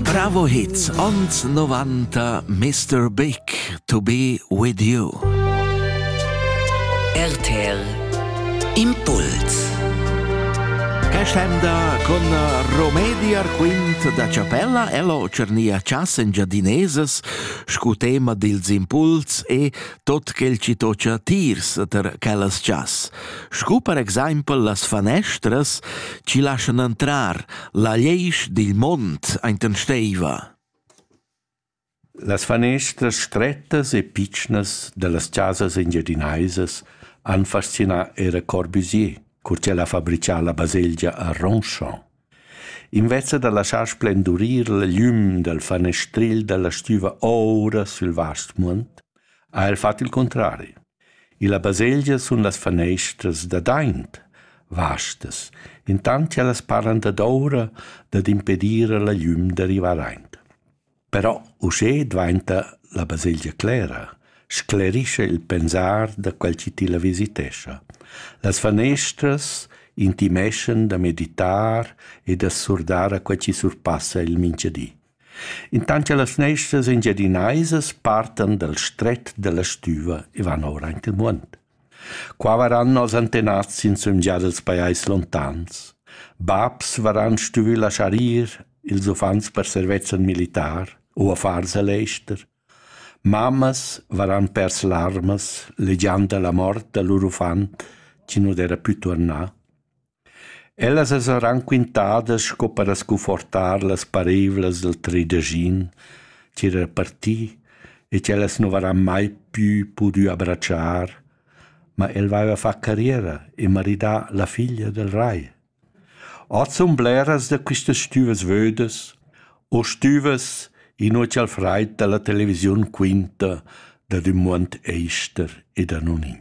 Bravo Hits ons 90 Mr. Big to be with you. RTL Impuls Cascenda con Romedi Arquint da Chapella ello cernia chas engiadineses scu tema dils impuls e tot quel ci tocia tirs ter quellas chas. Scu per exaimpel las fanestras ci lascian entrar La liesch dil mond enten steva. Las fanestras strettas e pitschnas dallas chasas engiadinaisas han fascinà era Corbusier, cur ch'el ha fabricà la baselgia a Ronchamp. Invece da laschar splendurir la glüm dal fanestril dalla stüva oura sül vast muond, ha el fat il contrari. Illa baselgia sun las faneistras dad aint vastas, intant cha las paran dad oura dad impedir a la glüm da rivar aint. Però uschè dvainta la baselgia clera, sclerischa il pensar da quel chi tilla visitescha. Las faneistras intimeschan da meditar e da surdar a quel chi surpassa il mincha di. Intant che las fneistras engiadinaisas partan dal stret dalla stüva e van ora aint il muond. Qua varan els antenats in sumgia dels pajais lontans. Babs varan stuvü laschar ir ils uffants per servezzan militar u affars al ester. Mammas varan pers larmas, legiand la mort da lur uffant, chi nu d'era pü tornà. Ellas as han raquintadas sco per scunfortar las parevlas dal tridaschin chi era parti e ch'ellas nu varan mai pü pudü abratschar, ma el vaiva fat carriera e maridà la figlia dal rai. Hoz sun bleras da quistas stüvas vödas o stüvas inua cha'l fraid da la televisiun quinta dad ün muond ester e da non in.